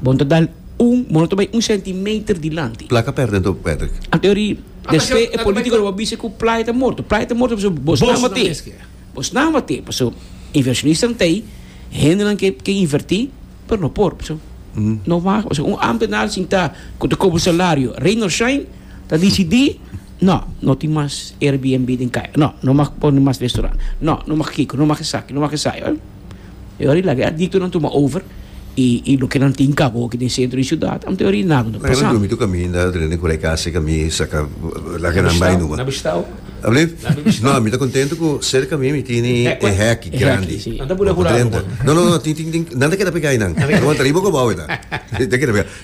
Bo no ta dal un, bo no ta bai un centimeter dilanti. Playa perde anto Patrick. Anto eri despe e politico lo bo a bisa cu playa ta morto. Playa ta morto pasobra bos nan mate. Bos nan mate paso inversionistan ta ey, hendenan ke ke inverti pero no por paso no waga paso un ambtenaar sin ta cu ta cobra salario Reynolds Shine ta dicidi no, no tin mas Airbnb den kaya, no, no mag pone mas restaurant, no, no mag kico, no mag esaki, no mag esaki. E ora di laga e adiktonan tuma over i loke nan tin kaba oki den sentro di siudat anta e ora di nagu ta pasan. Dumi tok ami na rende ku Raikasi ka mi saka laga nan bai numa. Na bishita o? Alblif? No ami ta kontento ku serka mi mi tini e hek grandi. Anta bo na hura algu man? No no no tin tin tin nan ta keda pega ainan. Nan ta riba o kabao ainan.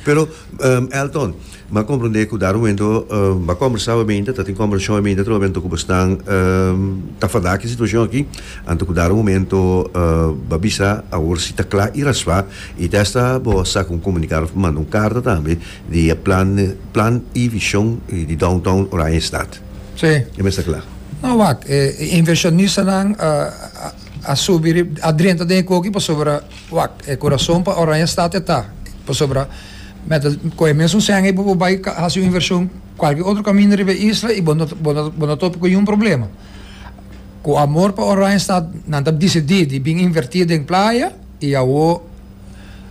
Pero Elton, m'a komprendé ku dado momento b'a kombersá wèn mente, tatin komberashon wèn mente tròp anto ku boso nan ta fadá ku e situashon akí, anto ku dado momento b'a bisa awor si ta kla i raspá i ta esta bo a saka un komunikado òf manda un karta tambe di e plan plan i vishon di downtown Oranjestad. Si. E mester kla. No wak, e invershonistanan a. A subi rib, a drenta den e koki pasobra wak, e kurason pa Oranje Stad e ta, pasobra mèt a kohe e mesun sèn ei pa bo bai hasi un invershon kualke otro kaminda riba e isla i bo no bo no bo no topi ku niun problema. Ku amor pa Oranje Stad nan ta disidí di bin invertí den playa i awo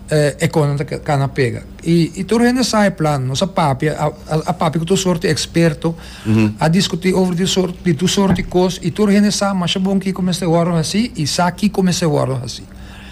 eh, e kosnan ta kana pega. I, i tur hende sa e plan, nos a papia, a, a, a papia ku tur sorti eksperto, a diskutí over di sor, di tur sorti kos, i tur hende sa masha bon kiko mester wòrdu hasí i sa kiko mester wòrdu hasí.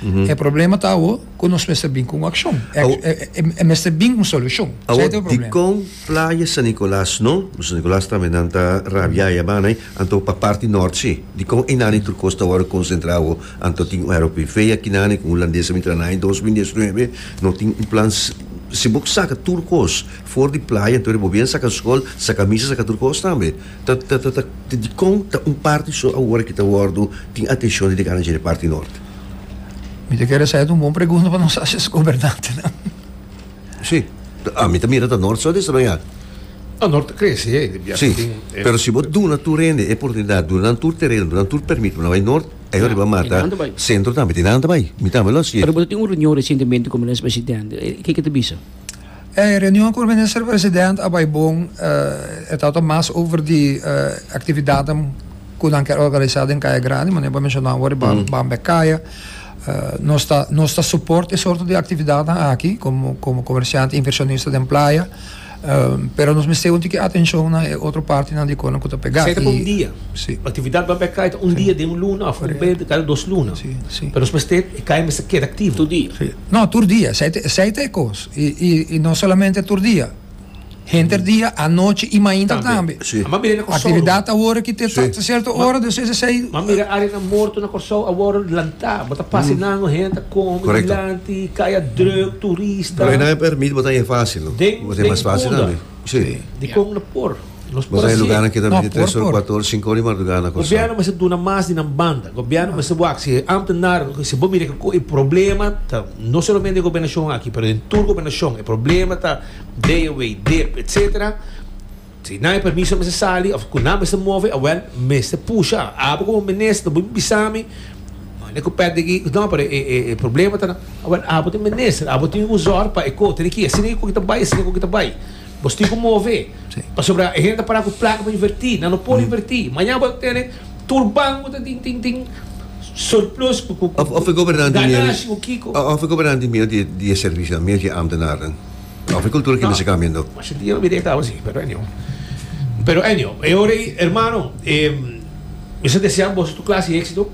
E problema ta awo ku nos mester bin ku un akshon, e, Awo- e, e, e mester bin un solushon. Sa e ta e Awor, problema. dikon Playa San Nicolas no? San Nicolas tambe nan ta rabiá ya bana ei. Anto pa parti nort si. Dikon einani tur kos ta wòrdu konsentrá awo? Anto tin un aeropi fei akinani ku hulandes a mi tra nan en dos mil dies nuebe? No tin un plan s. Si bo saka tur kos for di playa anto e bo bien saka skol, saka misa, saka tur kos tambe. Ta ta ta ta dikon ta un parti so awor a ki ta wòrdu tin atenshon di degana dje di parti nort? Mi ta kere sa e ta un bon pregunta pa nos haci nos gobernantenan. Sí. A mi ta mira ta Noord so desarrollá. No, Noord ta krese ya. Sí. Pero si bo duna tur hende e oportunidat, duna nan tur tereno, duna nan tur permit pa nan bai Noord, ayo riba Mata Sentro tambe tin nan ta bai. Mi tambe lo hasié. Pero bo ta tin un reunion resientemente ku Minister Presidente. Ke ke ta bisa? E reunion ku Minister Presidente a bai bon. E tabata mas over di aktividatnan ku nan ker organisá den Kaya Grandi, manera bo a menshoná awor riba Bambekaya. Nos ta nos ta support e sorto di actividadnan aki como como comerciante inversionista den playa pero nos mester un tiki atencion na e otro partinan di Conan cu ta pega. Sey ta pa un dia. Si. Actividad bay bay cay ta un dia den un luna of un bay cada dos luna. Si, si. Pero nos mester e cay mester keda activo. Tur dia. Si. No tur dia sey ta sey ta e cos y y y no solamente tur dia. Henter dia, anochi i mainta tambe. Aktividat awor aki te ta sierto ora, dus es esei. M'a mira arenan morto na Kòrsou awor lantá. Bo ta pasa nan no hende ta komi dilanti, kaya drùk, turista. Pero esnan e permit bo ta e fásil no. Bo ta e mas fásil tambe. Sí. Dikon nan por? Nos por hasié. Nos por por. Bo ta e lugar nan ke ta bini tres or, kuater or, sinku or di mardugá na Kòrsou. Gobièrnu mester duna mas di nan banda. Gobièrnu mester wak si e ámtenar, si bo mira ke e problema ta no solamente den gobernashon aki, pero den tur gobernashon e problema ta. Dei e way dip etc. Si nan e permiso mester sali of cu nan mester move awel mester pusha abo como minister no boe bisami mane cu pet deki no pero e e e problema ta na awel abo ta minister abo tin cu zorg pa e co tene ki asina cu ta bay asina cu ta bay bostico move pasobra e hende ta para cu placa pa inverti nan no por inverti maña bo ta tene Tur banco ta tin tin tin surplus cu cu cu cu ganashi cu kico. Of e gobernante mira di di e servicionan, mira di e ambtenarnan. Of e cultura ki mester cambia no. Masha dia lo mira e taba así, pero anyhow. Pero anyhow, e ora ei, hermano, mi sa desea boso tur clase di exito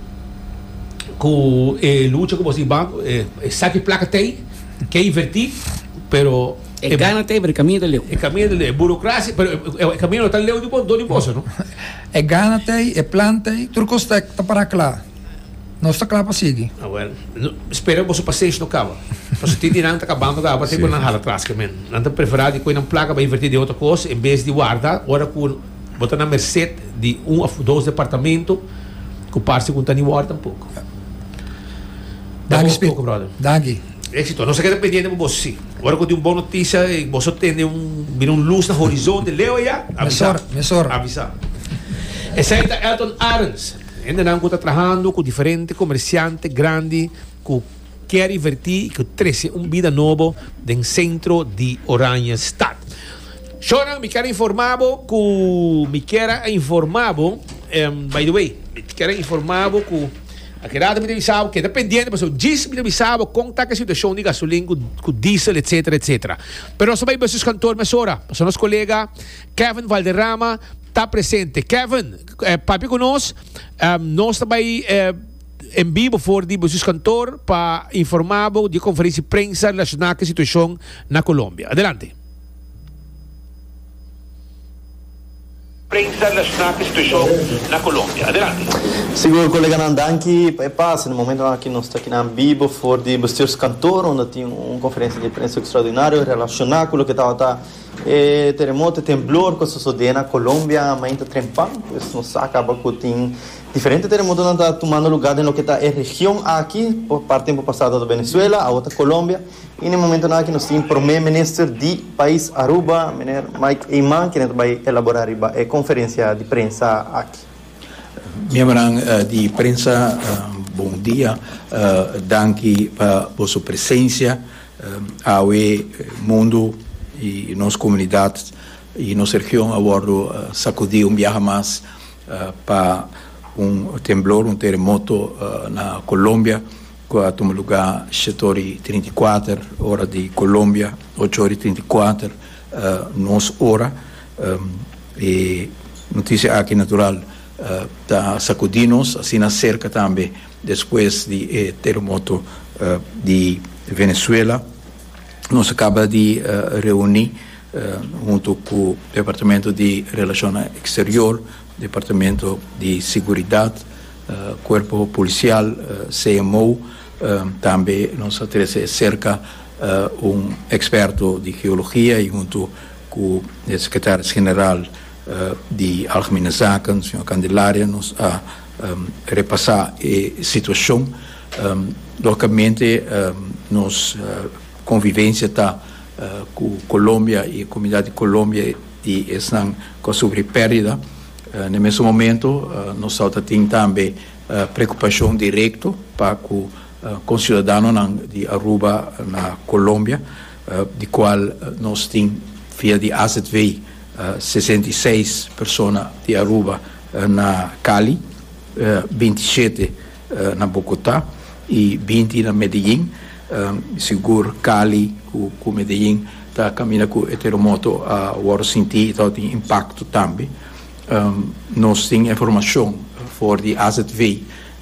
cu e lucha cu boso tin banco, e saki placa tei, ke inverti, pero E gana tei, pero e camino ta leu. e camino ta leu, e burocracia, pero e camino no ta leu di bo, do di boso no. E gana ta ei, e plan ta ei, tur cos ta ta para cla. Nos ta cla pa sigui. Ah well, no, spera boso paciensh no caba. Paso tin di nan ta cabando caba tin cu nan hala tras ke men. Nan ta prefera di coe nan placa pa inverti den otro cos en bes di warda ora cu bo ta na merced di un of dos departamento cu parce cu no ta ni worth tampoco. Danki Spit, danki. Éxito. Nos ta keda pendiente bo bo sí. Ora cu tin un bon noticia y bo so tende un, mira un luz na horizonte leu ayá, avisa. Mesor, mesor. Avisa. Esey ta Elton Arends, hendenan cu ta trahando cu diferente comerciante grandi cu kier inverti y cu trece un bida nobo den centro di Oranjestad. Shownan, mi kier a informa bo cu, mi kier a informa bo, em, by the way, mi kier a informa bo cu, A keda ato mi ta bisa bo, keda pendiente pasobra djis mi ta bisa bo kon ta ku e situashon di gasolin ku diesel etsetera etsetera. Pero nos ta bai basuis kantor mesora pasobra nos kolega Kevin Valderrama ta presente. Kevin, papia ku nos, nos ta bai en bibo for di basuis kantor pa informa bo di e konferensia di prensa relashona ku e situashon na Colombia. Adelante. Prensa nacional pa e situacion na Colombia. Adelante. Sigur koleganan danki pa e pase na momentonan aki nos ta kinan bibo for di bestuurskantoor unda tin un konferensia di prensa ekstraordinario relashoná ku loke tabata e teremoto, e tembloor ku a sosodé na Colombia mainta trempan. Pues nos sa kaba ku tin diferente teremotonan ta tumando lugá den loke ta e region aki, por parte tempu pasado tabata Venezuela, awo ta Colombia. I na e momentonan aki nos tin Promé Minister di pais Aruba, Meneer Mike Eman, kende ta bai elaborá riba e konferensia di prensa aki. Miembernan di prensa, bon dia. Danki pa boso presensia. Awe mundu i nos komunidat i nos region a wòrdu sakudí un biaha mas pa un temblor, un teremoto na Colombia. cu a tuma luga shete ora y trinta y kuater ora di Colombia, ocho ora y trinta y kuater nos ora. E noticia aki natural ta sacudi nos, asina cerca tambe despues di e terremoto di Venezuela. Nos a caba di reuni hunto cu Departamento di Relacionnan Exterior, Departamento di Seguridad, Cuerpo Policial, CMO, tambe nos a trece e cerca un experto di geologia y hunto cu e Secretaris General di Algemene Zaken, Señor Candelaria, nos a repasa e situacion. Logicamente nos convivencia ta cu Colombia y e comunidad di Colombia y esnan cu a sufri perdida. Na e mesun momento nos tau ta tin tambe preokupashon direkto pa ku konsiudadanonan di Aruba na Kolombia, di kual nos tin via di AZV sesenta i seis persona di Aruba na Cali, binti shete na Bogotá y binti na Medellín, sigur Cali cu Medellín ta caminda cu e terremoto a worde sinti y ta worde tin impacto tambe. Nos tin informacion for di azv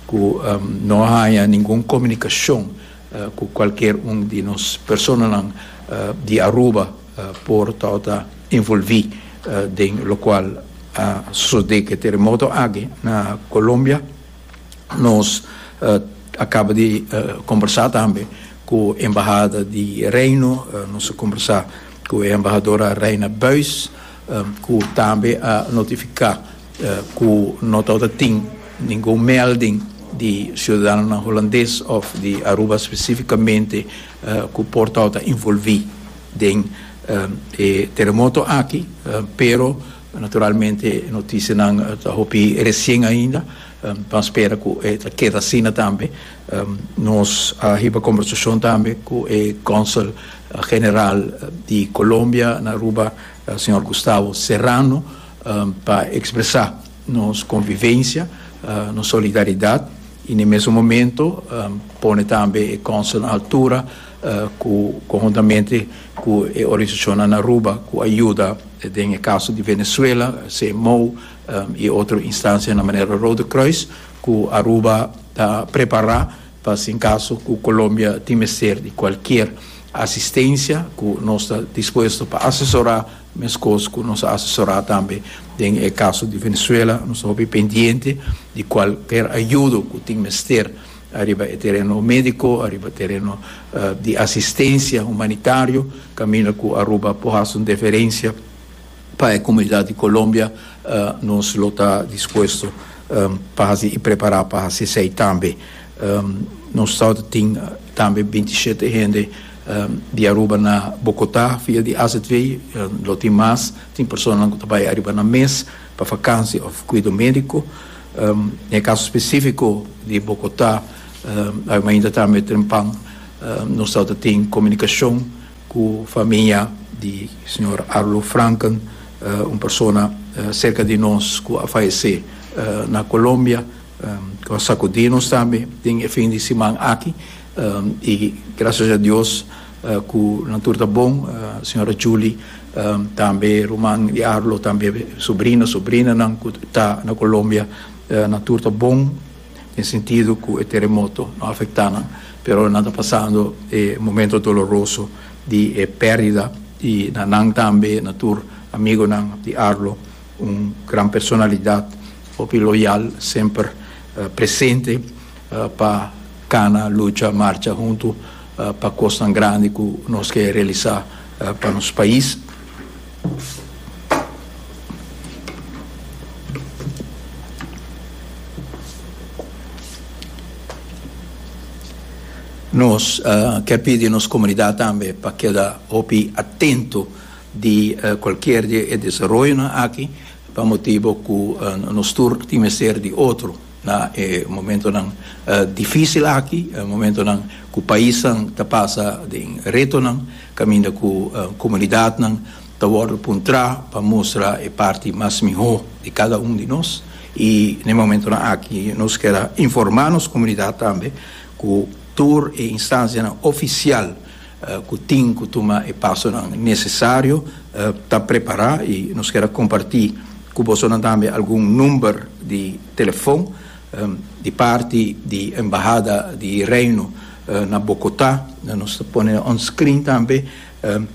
cu no a haya ningun comunicacion cu cualkier un di nos personanan di Aruba por ta worde involvi den locual a sucede cu e terremoto aki na Colombia. Nos a kaba di kombersá tambe ku e embahada di Reino, nos a kombersá ku e embahadora Reina Buys ku tambe a notifiká ku no tabata tin ningun melding di siudadanonan Hulandes òf di Aruba spesífikamente ku por tabata involví den e teremoto aki, pero Naturalmente e notisianan ta hopi resien ainda, pan spera ku e ta keda asina tambe. Nos a hiba kombersashon tambe ku e Konsel General di Kolombia na Aruba, señor Gustavo Serrano, pa ekspresá nos konvivensia, nos solidaridat i na e mesun momento pone tambe e Konsel na altura, Cu conhuntamente cu e organisacionnan na Aruba cu a yuda den e caso di Venezuela, CMOO y otro instancia na manera Rode Kruis, cu Aruba ta prepara pa si en caso cu Colombia tin mester di cualkier asistencia cu nos ta dispuesto pa asesora, mescos cu nos a asesora tambe den e caso di Venezuela. Nos ta hopi pendiente di cualkier ayudo cu tin mester. Ariba e tereno medico, ariba tereno di asistencia humanitario, caminda cu Aruba por haci un deferencia pa e comunidad di Colombia, nos lo ta dispuesto pa haci y prepara pa haci esey tambe. Nos ta tin tambe binti shete hende di Aruba na Bogota via di AZV, lo tin mas, tin personanan cu ta bay ariba nan mes pa vakantie of cuido medico. Na e kaso spesífiko di Bogotá, Armeinda tambe ta den pan, nos tau ta tin komunikashon ku famia di señor Arlo Franken, un persona serka di nos ku a fayesé na Colombia, ku a sakudí nos tambe den e fin di siman aki, i grasias a Dios, Ku nan tur ta bon, Señora Julie, tambe ruman di Arlo, tambe sobrino, sobrinanan ku ta na Colombia, nan tur ta bon den sentido ku e teremoto no afektá nan, pero nan ta pasando e momento doloroso di e perdida di na nan tambe na tur amigonan di Arlo, un gran personalidad, hopi loyal, semper presente. Pa kana, lucha, marcha huntu pa kosnan grandi ku nos ke realisá pa nos pais. Nos ke pidi nos komunidat tambe pa keda hopi atento di kualkier di e desaroyonan aki pa motibu ku nos tur tin mester di otro. Na e momentonan difísil aki, momentonan ku paisnan ta pasa den retonan, kaminda ku komunidatnan ta wòrdu puntrá pa mustra e parti mas mihó di kada un di nos, i na e momentonan aki nos kier a informá nos komunidat tambe ku tur e instansianan ofisial, ku tin ku tuma e pasonan nesesario ta prepará i nos kier a kompartí ku bosonan tambe algun number di telefon di parti di Embahada di Reino na Bokotá nos ta pone on screen tambe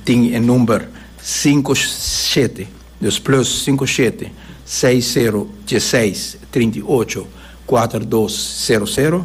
tin e number sinku shete dus plus sinku shete seis sero dies seis trinta i ocho kuater dos sero sero.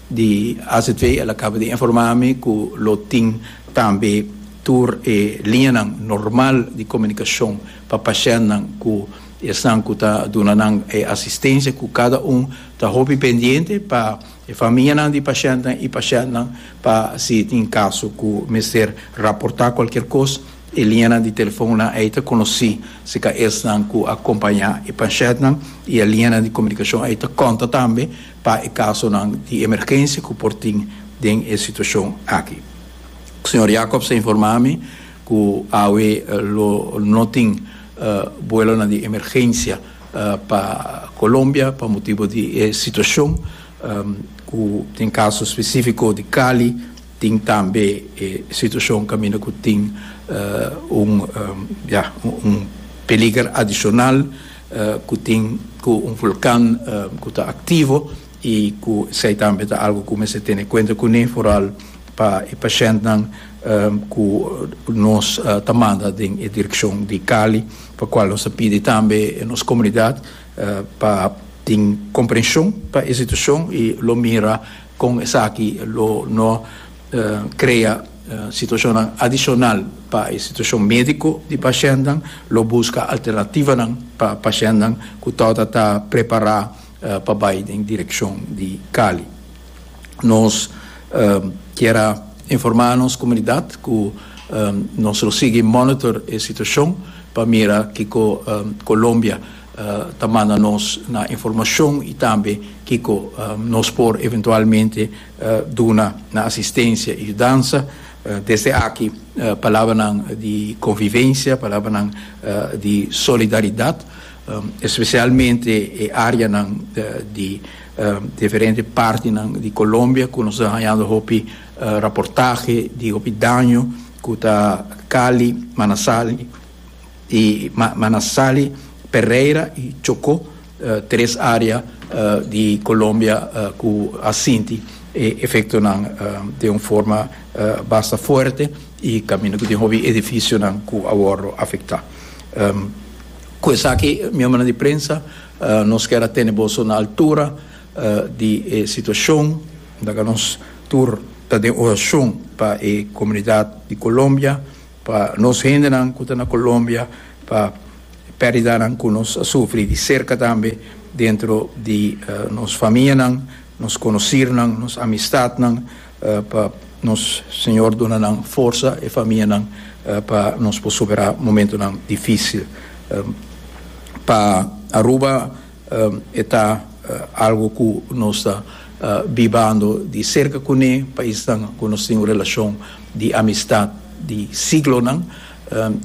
Di azv el a caba di informa mi cu lo tin tambe tur e liñanan normal di comunicacion pa pashentnan cu esnan cu ta duna nan e asistencia cu cada un ta hopi pendiente pa e famianan di pashentnan y pashentnan pa si tin caso cu mester raporta cualkier cos e liñanan di telefonnan ey ta conoci si ca esnan cu a compaña e pashentnan y e liñanan di comunicacion ey ta conta tambe pa e kasonan di emergensia ku por tin den e situashon aki. Señor Jacobs a informá mi ku awe lo no tin buelonan di emergensia pa Colombia pa motibu di e situashon ku tin kaso spesífiko di Cali, tin tambe e situashon kaminda ku tin un peliger adishonal. ku tin ku un vulkan ku ta aktivo i ku esei tambe ta algu ku mester tene kuenta kuné foral pa e pashèntnan ku nos ta manda den e direkshon di Cali pa kual nos ta pidi tambe nos komunidat pa tin komprenshon pa e situashon i lo mira Con esaki lo no crea situacionnan adicional pa e situacion medico di pacientnan, lo busca alternativanan pa pacientnan cu torta ta prepara pa bay den direccion di Cali. Nos kier a informa nos comunidad cu nos lo sigui monitor e situacion pa mira kico Colombia ta manda nos nan informashon i tambe kiko nos por eventualmente duna nan asistensia i yudansa. Desde aki palabranan di konvivensia, palabranan di solidaridat, espesialmente e areanan di diferente partinan di Kolombia ku nos ta hañando hopi raportahe di hopi daño ku ta Cali, Manasali. y ma nan sali Pereira y Chocó tres area di Colombia cu a sinti e efectonan den un forma basta fuerte y caminda cu tin hopi edificionan cu a wordo afecta. Cu esaki miembronan di prensa nos kier a tene boso na altura di e situacion laga nos tur ta den oracion pa e comunidad di Colombia. Pa nos hendenan ku ta na Colombia, pa e pérdidanan ku nos a sufri di serka tambe dentro di nos famianan, nos konosirnan, nos amistatnan, pa nos Señor duna nan forsa e famianan pa nos por superá momentunan difísil. Pa Aruba. E ta algu ku nos ta bibando di serka kuné, paisnan ku nos tin un relashon di amistat di siglonan,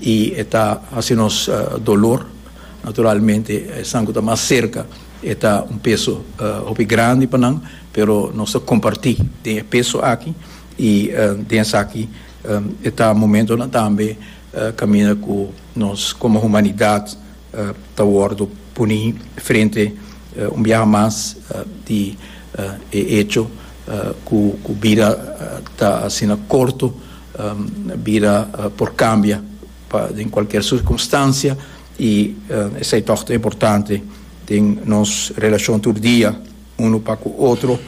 i e ta hasi nos dolor. Naturalmente, esnan ku ta mas serka e ta un peso hopi grandi pa nan, pero nos ta kompartí den e peso aki, i den esaki e ta momentonan tambe kaminda ku nos komo humanidat. ta wordo puni frente un biaha mas di e hecho cu bida ta asina corto, bida por cambia pa den cualkier circunstancia y esai toch ta importante den nos relacion tur dia uno pa cu otro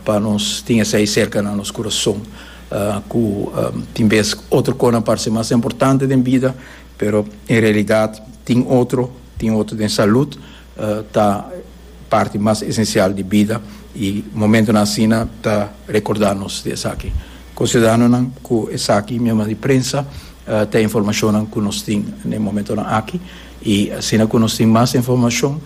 pa nos tin esai cerca na nos curason cu tin bes otro cosnan parce mas importante den bida. Pero en realidad tin otro, tin otro den salud ta parti mas esencial di bida y momentonan asina ta recorda nos di esaki. Con ciudadanonan cu esaki mesmo di prensa ta informacionnan cu nos tin den momentonan aki y asina cu nos tin mas informacion,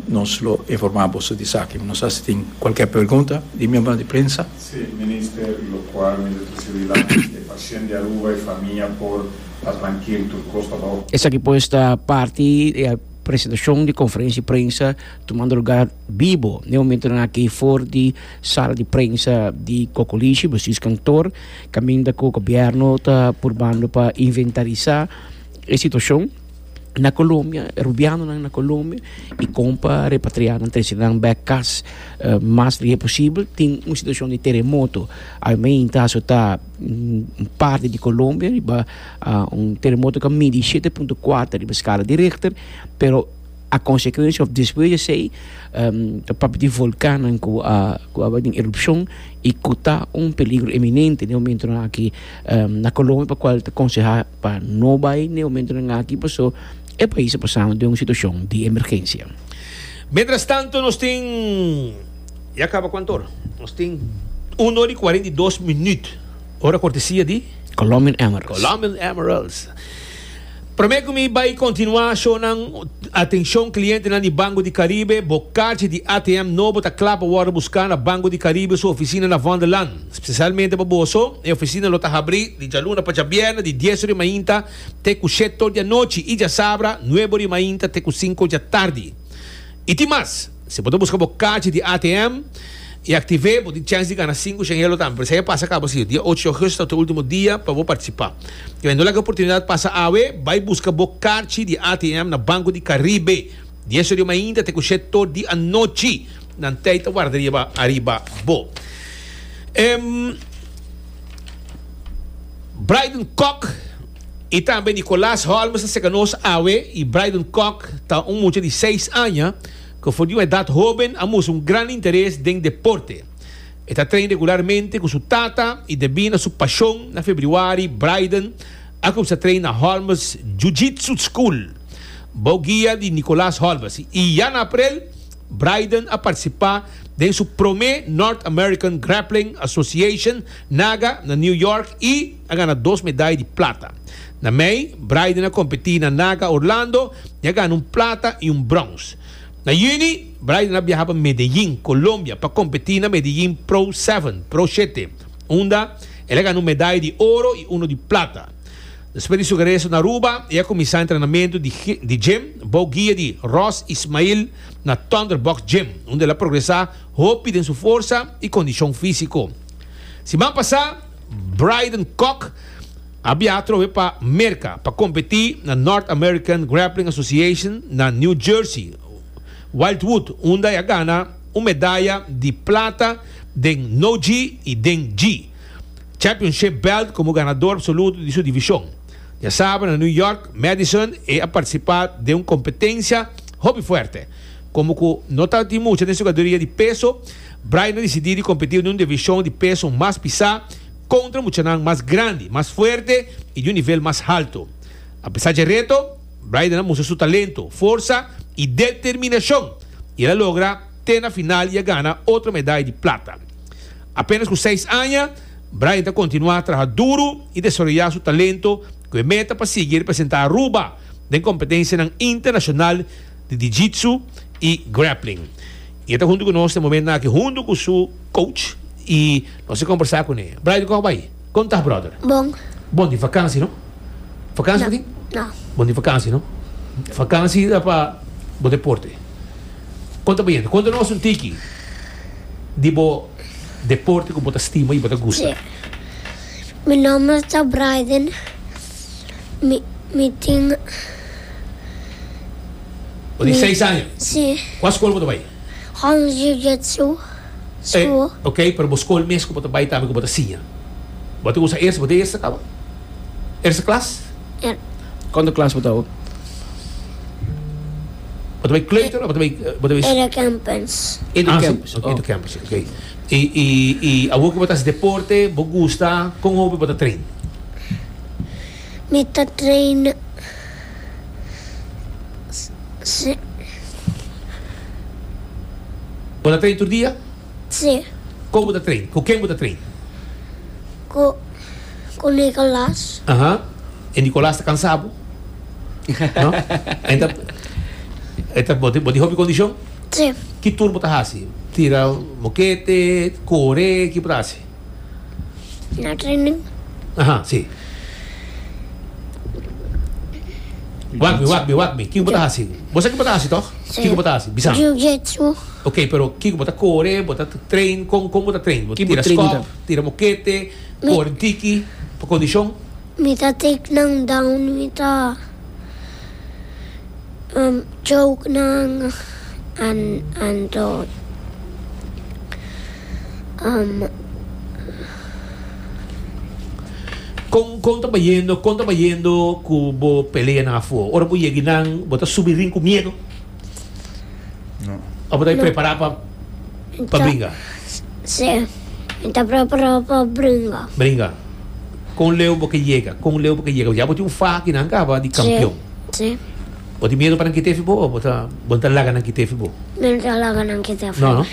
Nos lo informa boso di esaki. Nos a si tin cualkier pregunta di miembronan di prensa. Si, Minister, locual mi Doctor Sibila, e pashent di Aruba, e famia por ta trankil, tur cos ta bajo. Esaki pues ta parti di e presentacion di conferencia di prensa tumando lugar bibo n'e momentonan aki for di sala di prensa di Cocolishi, Besius Kantoor, caminda cu Gobierno ta purbando pa inventarisa e situacion. Na Colombia, rubianonan na Colombia i kon pa repatriá nan trese nan bèk kas mas lihé posibel. Tin un situashon di teremoto almén ta aso ta un parti di Colombia riba un teremoto ku a midi shete punto kuater riba skala di Richter, pero a konsekuensia òf despues di esei ta papia di volkannan ku a ku a bai den erupshon i ku ta un peligro eminente den momentonan aki na Colombia pa kual ta konsehá. pa no bai n'e homentonan aki paso e pais a pasando den un situacion di emergencia. Mientrastanto nos tin, ya caba cu antor, nos tin uno di cuarenta y dos minuut ora cortesia di. Colombian Emeralds. Colombian Emeralds. Prome cu mi bai continua shonan atencion clientenan di Banco di Caribe, bo carchi di ATM no bo ta cla pa wordo busca na Banco di Caribe su oficina na Vondellaan. Spesialmente pa boso, e ofisina lo ta habri di djaluna pa djabièrnè di dies ori mainta te ku shet tor di anochi i djasabra nuebe ori mainta te ku sinku djatardi. I tin mas, si bo ta buska bo kachi di ATM i aktiv'é, bo tin chèns di gana sinku shengelo tambe. Pero si aya pasa kaba si dia ocho di ogusto ta e ultimo dia pa bo partisipá. I bai no laga e oportunidat pasa awe, bai buska bo kachi di ATM na Banku di Karibe dies ori mainta te ku shet tor di anochi. Nan tei ta warda riba ariba bo. Em, Brydon Kok y tambe Nicolas Holmes ta cerca nos awe y Brydon Kok ta un mucha di seis aña cu for di un edad hoben a mustra un gran interes den deporte. E ta train regularmente cu su tata y debi na su pasion na febriuari Brydon a cuminsa train na Holmes Jiu-Jitsu School bou guia di Nicolas Holmes y ya na aprel Braeden a partisipá den su promé North American Grappling Association, NAGA, na New York i a gana dos medai di plata. Na mei, Braeden a kompetí na NAGA Orlando i a gana un plata i un brons. Na yüni, Braeden a biaha pa Medellín, Colombia, pa kompetí na Medellín Pro Seven, Pro Shete, unda el a gana un medai di oro i uno di plata. Despues di su regreso na Aruba, e a cuminsa entrenamento di gym bou guia di Ross Ismail na Thunderbox Gym, unda el a progresa hopi den su forsa y condicion fisico. Siman pasa, Brydon Kock a biaha atrobe pa Merca pa competi na North American Grappling Association na New Jersey, Wildwood, unda e a gana un medaya di plata den No-Gi y den Gi. Championship belt komo ganador absoluto di su divishon. Dia sábado na New York, Madison e a partisipá den un kompetensia hopi fuerte. Komo ku no ta tin mucha den su katagoria di peso, Brian a disidí di kompetí den un divishon di peso mas pisá kontra muchanan mas grandi, mas fuerte i di un nivel mas haltu. Apesá dje reto, Brian a mustra su talento, forsa i determinashon i el a logra te na final i a gana otro medai di plata. Apenas ku seis aña, Brian ta kontinuá traha duru i desaroyá su talento ku e meta pa sigui representá Aruba den kompetensianan internashonal di di jitsu i grappling. I e ta huntu ku nos den momentonan aki huntu ku su coach i nos a kombersá kuné. Brian, kòm a bai? Kon ta brother? Bon. Bon di vakansi no? Vakansi bo tin? No. Bon di vakansi no? Vakansi ta pa bo deporte. Kon ta bo yende? Konta nos un tiki di bo deporte ku bo ta stima i bo ta gusta. Mi nomber ta Braiden. Mi mi tin. Bo tin seis aña. Si. Kua skol bo ta bai? Hans Jiu-Jitsu School. E, ok, pero bo skol mes ku bo ta bai tambe ku bo ta siña? Bo ta usa eerste, bo ta eerste kaba? Eerste klas? Ja. Konta klas bo ta awo? Bo ta bai kleuter of bo ta bai? Indoorcampus. Indoorcampus, ok, indoorcampus, ok. I, i, i awor ku bo ta hasi deporte, bo gusta, kon hopi bo ta train? Mi ta traina si. Bo ta train tur dia? Si. Kon bo ta train? Ku ken bo ta train? Ku ku Nikolas. Aha. E Nikolas ta kansa bo? No. E ta e ta bo tin hopi kondishon? Si. Ki tur bo ta hasi? Tira mokete? Kore? Ki bo ta hasi? Na training. Aha, si. Wak mi, wak mi, wak mi. Kiko bo ta hasi? Bo sa kiko bo ta hasi, tòg? Sí. Kiko bo ta hasi? Bisa. Jiu-jitsu. Ok, pero kiko bo ta kore, bo ta train, kon kon bo ta train? Bo Ki bo tira train skòf, ta? tira mokete, Mi- kore tiki, pa kondishon? Mi ta take nan down, mi ta choke nan anto Kon kon ta bayendo kon ta bayendo ku bo peleanan afo? Ora bo yegi nan bo ta subi rin ku miedu. Abo ta e prepará pa pa bringa? Sí, mi ta prepará pa bringa. Bringa. Kon leu bo ke yega? Kon leu bo ke yega? Ya bo tin un fa akinan kaba di kampion. Sí, sí. Bo tin miedu pa nan kitefi bo o bo ta bo no ta laga nan kitefi bo? Mi no ta laga nan kitefi bo. No, no?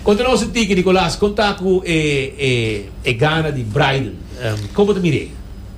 Kon ta nos sinti ki Nicolas? Kon ta ku e e e gana di Bryden? Kon bo ta mir'é?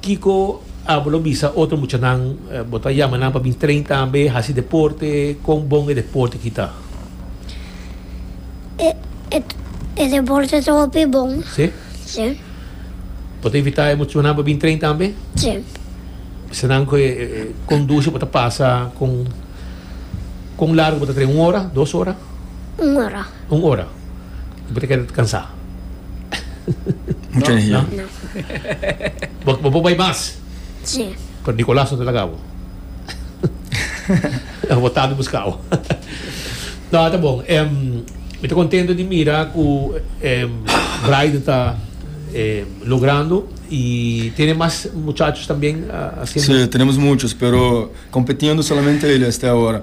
Kiko a bo lo bisa otro muchanan bo ta yama nan pa bin train tambe, hasi deporte? Kon bon e deporte ki ta? E deporte ta hopi bon. Si? Si. Bo ta invita e muchanan pa bin train tambe? Si. Bisa nan ku e kondushi bo ta pasa kon largu bo ta train? Un ora? Dos ora? Un ora. Un ora. bo ta keda ta kansa. Mucha energia. Bo por bai mas. Si. Pero Nicolas no ta laga bo. Lo bo tata buska bo. No, ta bon. Mi ta contento di mira cu Brighton ta logrando y tiene mas muchachos también haciendo. Si, tenemos muchos, pero competiendo solamente ellos hasta ahora.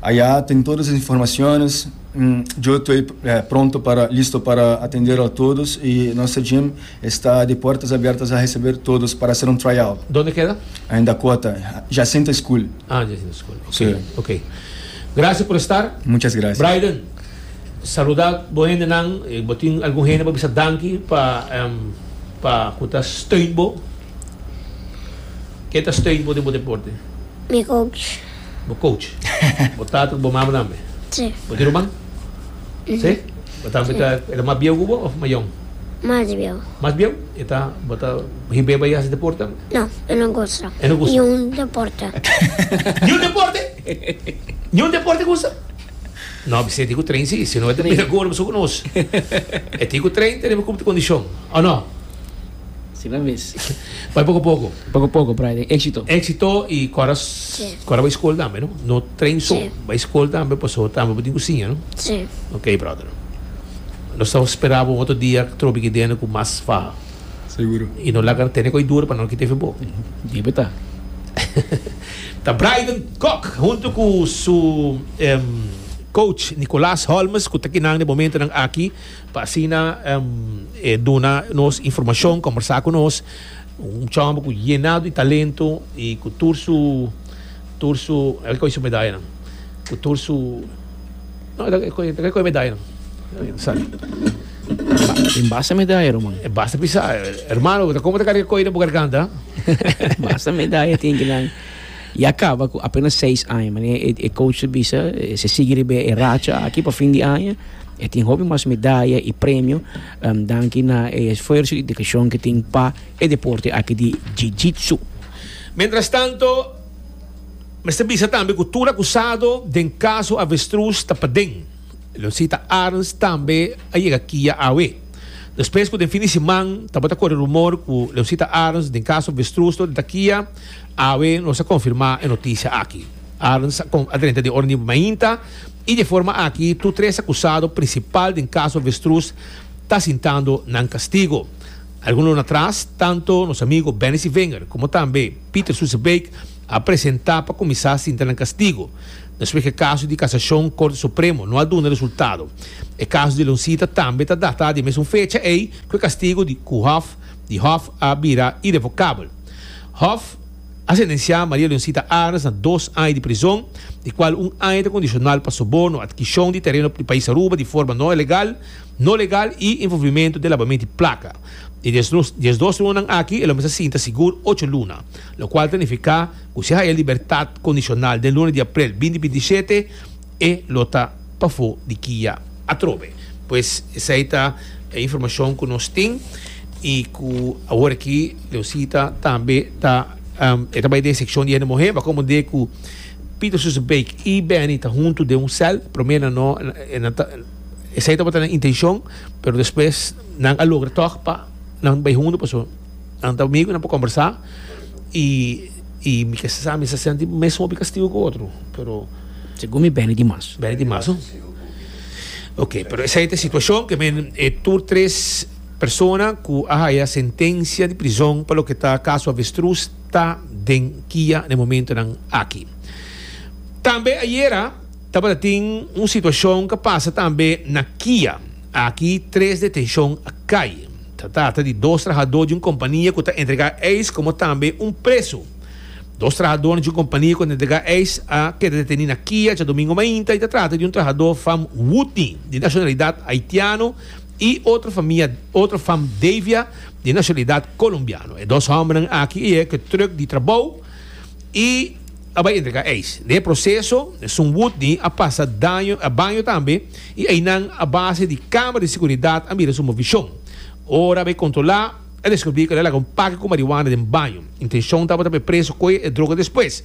Aya ten todos e informaciones. Yo toy pronto para listo para atender al todos y nuestro gym esta di puertas abiertas a receber todos para hacer un tryout. Donde keda? En Dakota, Jacinta School. Ah, en Jacinta School. Ok. Si. Ok. Gracias por estar. Muchas gracias. Braiden, saluda bo hendenan. Bo tin algun hende pa bisa danki pa pa cu ta steun bo? Ke ta steun bo den bo deporte? Mi coach. Bo coach. Bo tata cu bo mama tambe? Sí. Bo tin ruman? Sí. Bo tambe ta, e ta mas bieu cu bo of mas yong? Mas bieu. Mas bieu? E ta, bo ta hib'é bay haci deporte tambe? No, e no gusta. E no gusta? Ni un deporte. Ni un deporte? Ni un deporte e gusta? No, mi senti cu train sí, si no e ta bira cu ora bo su cu nos. E tin cu train, tene bo cumti condicion, o no? Si nan mes. Bai poco poco. Poco poco por ahi den exito. Exito y cora cora bai school tambe no? No train so. Si. Bai school tambe paso tambe bo tin cu siña no? Si. Ok brother. Nos ta spera bo un otro dia trobe aki dentro cu mas faha. Seguro. Y no laga tene cu a dura pa no kita efe bo. Debe ta. Ta Bryden Kok hunto cu su coach Nicolas Holmes cu ta kinan di momento nan aki. pa asina e duna nos informashon, kombersá ku nos, un chombo ku yená di talento i ku tur su, tur su, el koi su medayanan, ku tur su, no el el koi, el koi medayanan, Tin basta medaya ruman. e basta pisá, hermano, ta komo ta kari koi den bo garganta? Basta medaya tin kinan. Y a caba cu apenas seis aña, mane e coach ta bisa, si sigui riba e racha aki pa fin di aña, e tin hopi mas medaya y premio, danki na e esfuerso y dedicacion cu tin pa e deporte aki di Jiu-Jitsu. Mientrastanto, mester bisa tambe cu tur acusado den caso Avestruz ta paden. Leoncita Arns tambe a yega kia awe. Despues cu den fin di siman tabata core rumor cu Leoncita Arns den caso Avestruz lo di ta kia, Awe nos a konfirmá e notisia aki. Arns a a drenta den ora nibo mainta i di forma aki tur tres akusado prinsipal den kaso avestrus ta sintando nan kastigo. Algun luna atras tantu nos amigu Benny Sievinger komo tambe Pieter Soezebeek a presentá pa kuminsá sinta nan kastigo despues ku e kaso di kasashon Korte Supremo no a duna resultado. E kaso di Loncita tambe ta datá di e mesun fecha ei ku e kastigo di ku hòf di Hof a bira irevokabel. Hof a sentensiá Maria Leoncita Arens na dos aña di prizon, di kual un aña ta kondisional pa soborno, adkishon di tereno di pais Aruba di forma no legal, no legal i involvimentu den labamento di plaka. E diesdos lunanan aki el ome sa sinta sigur ocho luna, lokual ta nifiká ku si a haya libertat kondisional den luna di aprel binti binti i shete, E lo ta pafó di kia atrobe. Pues esei ta e informashon ku nos tin i ku awor aki Leosita tambe ta e ta bai den sekshon di Hende Muhé. Bo a komprendé ku Pieter Soeze Bake i Benny ta huntu den un sèl. Promé nan no, nan ta esei tabata nan intenshon pero despues nan a logra tòg pa nan bai huntu pasobra. Nan ta amigo, nan por conversa y y mi ke sa mi sa senti mes hopi castigo cu otro, pero Segun mi beni di mas. beni di mas, no? Ok, pero esei ta e situacion ke men e tur tres persona cu a haya sentencia di prizon pa loke ta caso avestruz ta den kia na e momentonan aki. Tambe ayera tabata tin un situacion ke a pasa tambe na kia. Aki tres detenshon a kai. Ta trata di dos trahadó di un kompania ku ta entregá eis komo tambe un presu. Dos trahadónan di un kompania ku ta entregá eis a keda detení na Kia djadomingu mainta i ta trata di un trahadó fam Woodney, di nashonalidat Haitiano, i otro famia otro fam Davia, di nashonalidat Kolombiano. E dos hòmbernan aki e ke trùk di trabou. i a bai entrega eis. Na e proseso, esun wutni a pasa daño, a baño tambe i einan a base di kamera di seguridat a mira su movishon. Ora a bai kontrolá, a deskubrí ku el a laga un pake ku marihuana den baño. Intenshon tabata pa e preso koe e droga despues.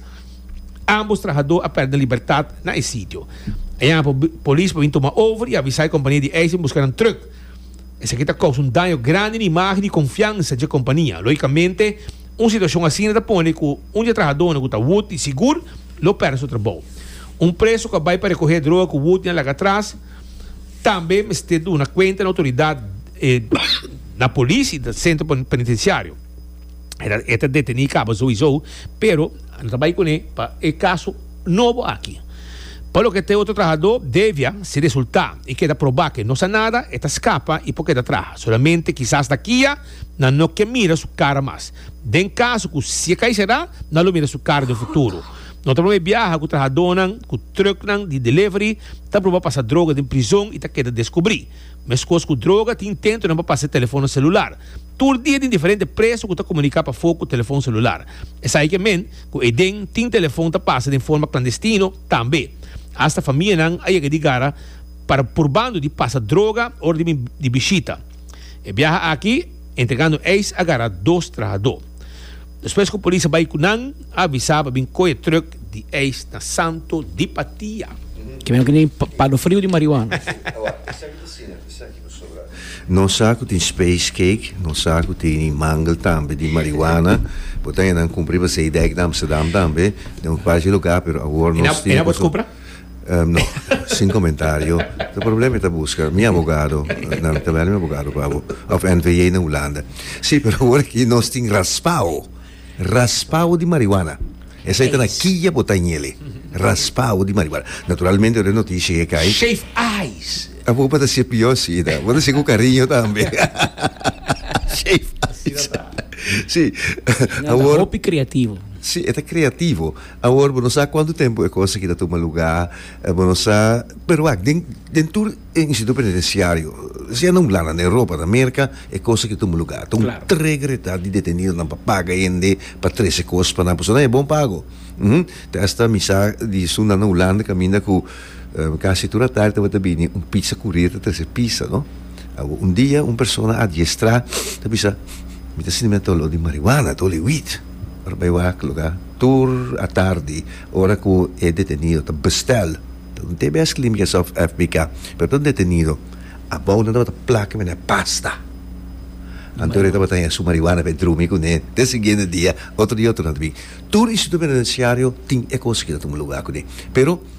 Ámbos trahadó a pèrdè libertat na e sitio. A yama pa polis pa bin tuma over i a avisá e kompania di eis pa bin buska nan trùk. Esaki ta kousa un daño grandi na imágen i konfiansa dje kompania. Loikamente. Un situashon asina ta pone ku un di e trahadónan ku ta wut i sigur lo pèrdè su trabou. Un preso ku a bai pa rekohé droga ku wut i a laga atras tambe mester duna kuenta na outoridat, na polis i na sentro penitensiario. E ta detení kaba souisou, pero no ta bai kuné pa e kaso nobo aki. Pa loke ta e otro trahadó, Devia, si resultá i keda probá ku e no sa nada, e ta skapa i por keda traha solamente kisas na Kia, nan no ke mira su kara mas. Den kaso ku si e kai será, nan lo mira su kara den futuro. No ta promé biaha ku trahadónan ku trùknan di delivery ta proba pasa droga den prizon i ta keda deskubrí. Meskos ku droga, tin intentonan pa pasa e telefonnan selular. Tur dia tin diferente preso ku ta komuniká pafó ku telefon selular. Esei ke men ku Edén tin telefon ta pasa den forma klandestino tambe. Asta famianan a yega di gara para purbando di pasa droga ora di bishita. E biaha aki entregando eis a gara dos trahadó. Despues ku polis a bai ku nan, a avisa pa bin koe trùk di eis na Santo di Patia. Kimen ku tin palo friu di marihuana. Nos sa ku tin space cake, nos sa ku tin e mangel tambe di marihuana. Bo ta henda nan kumpra i basei dèk na Amsterdam tambe, den un kuachi lugá, pero awor nos tin. Um, no, sin comentario. De problema está buscar mi abogado, na mi tabela mi abogado pa abo, of NVA na Holanda. Sí, pero agora que nos tin raspao, raspao de marihuana. Esa está na quilla bota en ele. Raspao de marihuana. Naturalmente, de noticia que cae. Shave eyes. Abo para ser pior, sí, da. Para ser con cariño también. Shave eyes. Sí. Agora. Hopi creativo. Sí, está creativo. Awor bo no sa cuanto tempo e cos aki ta tuma luga, bo no sa, pero wak, den, den tur e instituto penitenciario, si a na un blanda na Europa, na Merca, e cos aki tuma luga. Ta un Claro. tregretad di detenidonan pa paga hende pa trece cos pa nan, pasobra nan e bon pago. Umm. Te hasta mi sa di sunda na Hulanda caminda cu casi tur a tardi tabata bini un pizza courier ta trece pizza, no. Awor, un dia un persona adiestrá ta bisa, Mi ta sinti mi a ta olor di marihuana, a ta oler weed. Bay wak luga tur a tardi ora cu e detenido ta bestel pa un tbs Clínica South Africa pero tur detenido abou nan tabata plak cu nan pasta anto e tabata haya su marihuana pa e drumi cu nan den siguiente dia otro dia otro nan ta bin tur instituto penitenciario tin e cos aki ta tuma lugar cu nan pero.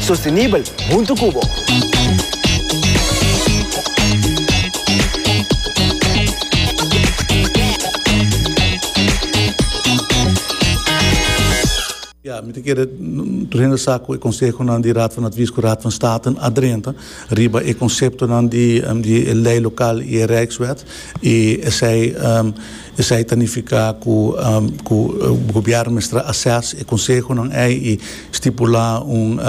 Sostenibel huntu cu bo. Ya, mi ta kere rehenda sa cu e consehonan di Raad van Advies cu Raad van State a drenta riba e conceptonan di e ley local y e Rijkswet y esey Esei ta nifiká ku ku gobièrnu mester asès e konsehonan ei i stipulá un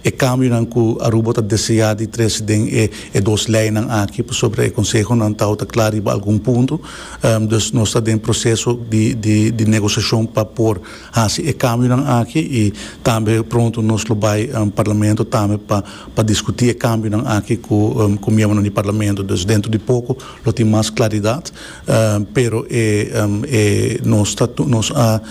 e kambionan ku Aruba ta deseá di trese den e e dos leinan aki pasobra e konsehonan ta outa kla riba algun punto. Dus nos ta den proseso di di di negosiashon pa por hasi e kambionan aki i tambe pronto nos lo bai Parlamento tambe pa pa diskutí e kambionan aki ku ku miembronan di Parlamento. Dus dentro di poko lo tin mas klaridat. Pero e e nos ta nos a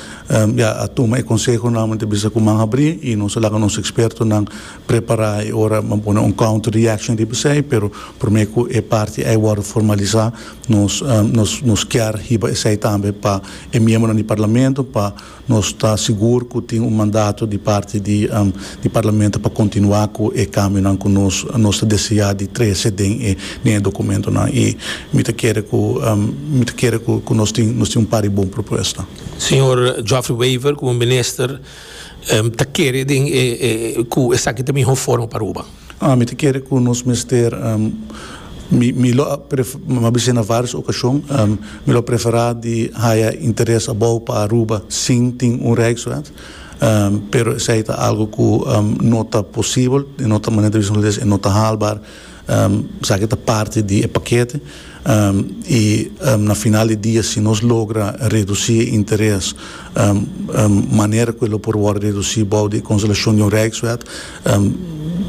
ya a tuma e konseho nòmalmente bisa ku man habrí i nos a laga nos ekspertonan prepará e ora nan pone un counter reaction riba esei pero promé ku e parti ei wòrdu formalisá nos nos nos kier hiba esei tambe pa e miembronan di parlamento pa Nos ta sigur cu tin un mandato di parti di di Parlamento pa continua cu e cambionan cu nos nos ta desea di trece den e den e documentonan y mi ta kere cu mi ta kere cu cu nos tin nos tin un par di bon propuesta. Señor Geoffrey Wever como Minister ta kere den e e cu esaki ta miho forma pa Aruba. Ah, mi ta kere ku nos mester, mi mi lo a prefera, bisai na vários okashon, mi lo a preferá di haya interes abou pa Aruba sin tin un Rijkswet, pero esei ta algu ku no ta posibel, i no ta manera di bisa nos les e no ta haalbaar, esaki ta parti di e pakete, i na final di dia si nos logra redusí e interes manera ku e lo por wòrdu redusí bou di e konselashon di un Rijkswet,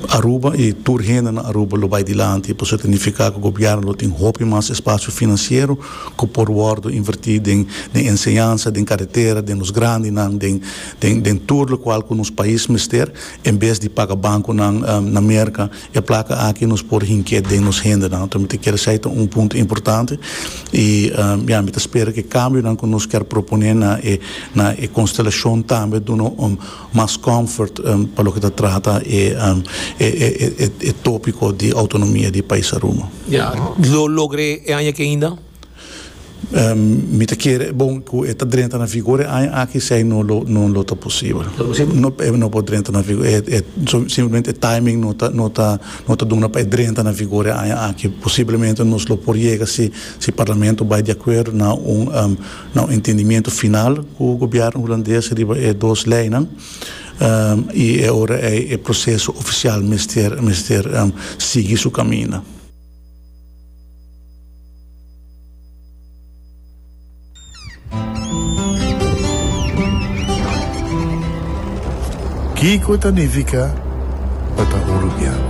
Aruba y tur hende na Aruba lo bay dilanti y pasobra ta nifica cu gobierno lo tin hopi mas espacio financiero cu por wordo inverti den den enseñansa, den caretera, den los grandinan, den den den tur locual cu nos pais mester en bes di paga banconan na Merca. E placa aki nos por hinke den nos hendenan tur mi ta kere esey ta un punto importante y ya mi ta spera cu e cambionan cu nos ker propone na e na e constelacion tambe duna un mas comfort pa loke ta trata e topico di autonomia di pais Aruba. Ya, lo logra e aña aki ainda? Mi ta kere, bon, cu e ta drenta na vigor e aña aki, si ai no lo, no lo ta posibel. No posibel? No, e no por drenta na vigor, e simplemente e timing no ta, no ta, no ta duna pa e drenta na vigor e aña aki. Posiblemente nos lo por yega si, si Parlamento bai di acuerdo na un Na un entendimiento final cu gobierno Hulandes riba e dos leynan y e ora ey e proceso oficial mester mester sigui su caminda. Kico ta nifica pa ta Uruguiano?